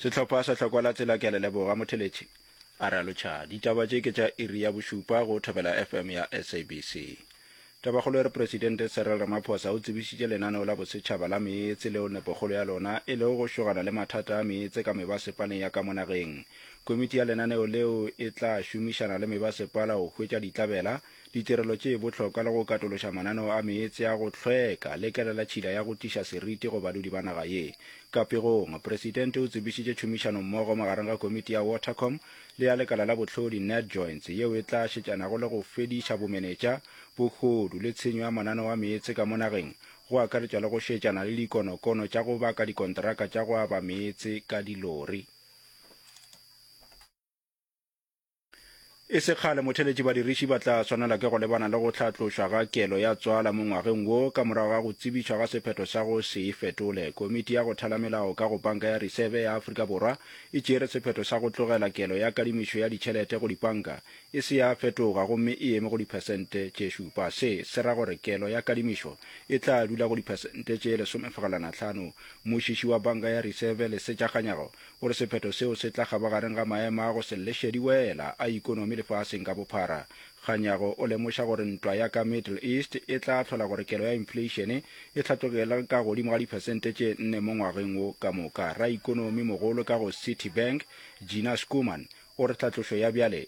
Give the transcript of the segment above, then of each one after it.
Sehlopha sa Hlokwa la Tsela Ke a le leboga Motheletši, a re a lotšha. Ditaba tše ke tša iri ya bošupa go Thobela FM ya SABC. Tabakgolo e re Presidente Cyril Ramaphosa o tsebišitše lenaneo la bosetšhaba la meetse leo nepokgolo ya lona e lego go šogana le mathata a meetse ka mebasepaleng ya ka mo nageng. Komiti ya lenaneo leo e tla šomišana le mebasepala go hwetša ditlabela ditirelo tše bohlokwa le go katološa mananeo a meetse a go hlweka le kela la tšhila ya go tiša seriti go badudi ba naga ye. Ka pegong, Presidente o tsebišitše tšhomišanommogo magareng ga Komiti ya Watercom le ya Lekala la Bohlodi, NetJoints, yeo e tla šetšanago le go fediša bomenetša, bogodu le tshenyo ya mananeo a meetse ka mo nageng, go akaretšwa le go šetšana le dikonokono tša go baka dikonteraka tša go aba meetse ka dilori. E se kgale motheletši badiriši ba tla swanela ke go lebana le go hlatlošwa ga kelo ya tswala mo ngwageng wo ka morago ga go tsebišwa ga sephetho sa go se e fetole. Komiti ya go thala melao ka go Panka ya Risebe ya Afrika Borwa e tšere sephetho sa go tlogela kelo ya kadimišo ya ditšhelete go dipanka e se ya fetoga gomme e eme go diphesente tše šupa. Se se ra gore kelo ya kadimišo e tla dula go diphesente tše lesomefegelwana tlhano. Mmušiši wa Banka ya Risebe, Lesetša Kganyago, O re sephetho seo se tla kgaba gareng ga maemo a go se lleše diwela a ikonomi lefaseng ka bophara. Kganyago o lemoša gore ntwa ya ka Middle East e tla hlola gore kelo ya infleišene e hlatlogele ka godimo ga diphesente tše nne mo ngwageng wo ka moka. Raikonomi-mogolo ka go Citibank, Gina Schoeman, o re tlhatlošo ya bjale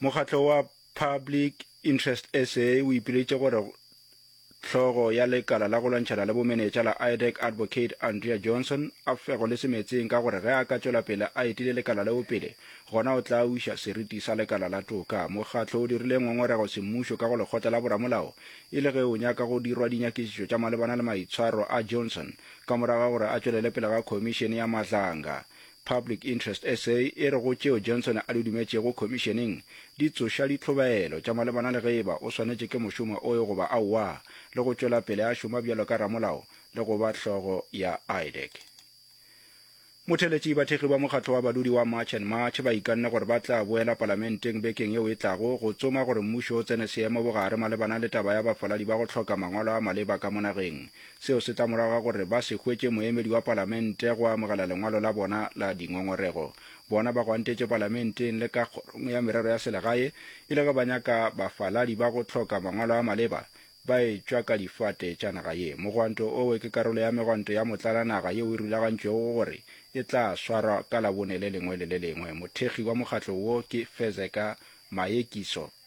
Mokgatlo wa Public Interest SA o ipiletše gore hlogo ya lekala la go lwantšhana le bomenetša la IDEC Advocate Andrea Johnson a fego le semetseng ka gore ge a ka tšwela pele a etile lekala leo pele gona o tla uša seriti sa lekala la toka. Mokgatlo o dirile ngongorego semmušo ka go lekgotla la boramolao e le ge o nyaka go dirwa dinyakišišo tša malebana le maitshwaro a Johnson ka morago ga gore a tšwelele pele ga khomišene ya matlanga Public Interest SA e re go tšeo Johnson a di dumetšego Khomišeneng di tsoša ditlhobaelo tša malebana le ge e ba o swanetše ke mošomo oe goba aowa le go tšwela pele a šoma bjalo ka ramolao le go ba hlogo ya IDEC. Motheletši, Bathekgi ba mokgatlo wa badudi wa March and March ba ikanne gore ba tla boela Palamenteng bekeng yeo e tlago go tsoma gore mmušo o tsene seemo bogare malebana le taba ya bafaladi ba go hloka mangwalo a maleba ka mo nageng Seo se tla morago ga gore ba se hwetše moemedi wa palamente go amogela lengwalo la bona la dingongorego. Bona ba gwantetše palamenteng le ka kgorong ya merero ya selegae e le ge ba nyaka bafaladi ba go hloka mangwalo a maleba ba etšwa ka difate tša naga ye. Mogwanto owe ke karolo ya megwanto ya motlalanaga yeo e rulagantšwego go gore e tla swarwa ka Labone le lengwe le le lengwe. Mothekgi wa mokgatlo wo ke Fezeka Mayekiso.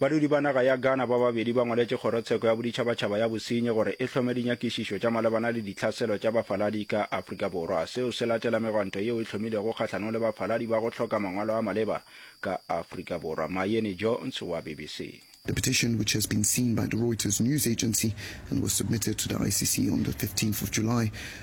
Badudi ba naga ya Ghana ba babedi ba ngwaletše Kgorotsheko ya Boditšhabatšhaba ya Bosenyi gore e hlome dinyakišišo tša malebana le dihlaselo tša bafaladi ka Afrika Borwa. Seo se latela megwanto yeo e hlomilego kgahlanong le bafaladi ba go hloka mangwalo a maleba ka Afrika Borwa. Mayeni Jones wa BBC. The petition, which has been seen by the Reuters news agency and was submitted to the ICC on the 15th of July,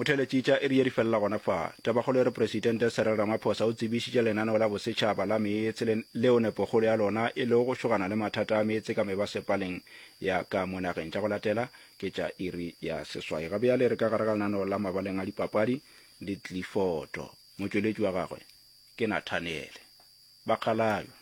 Motheeletšitša iri ye di felela gona fa. Tabakgolo e re Presidente Cyril Ramaphosa o tsebišitše lenaneo la bosetšhaba la meetse le, leo nepokgolo ya lona e lego go šogana le mathata a meetse ka mebasepaleng ya ka mo nageng. Tša go latela ke tša iri ya seswai. Ga bjale re ka gare ga lenaneo la mabaleng a dipapadi le tlifoto. Motšweletši wa gagwe ke Nathaniele Bakgalajwe.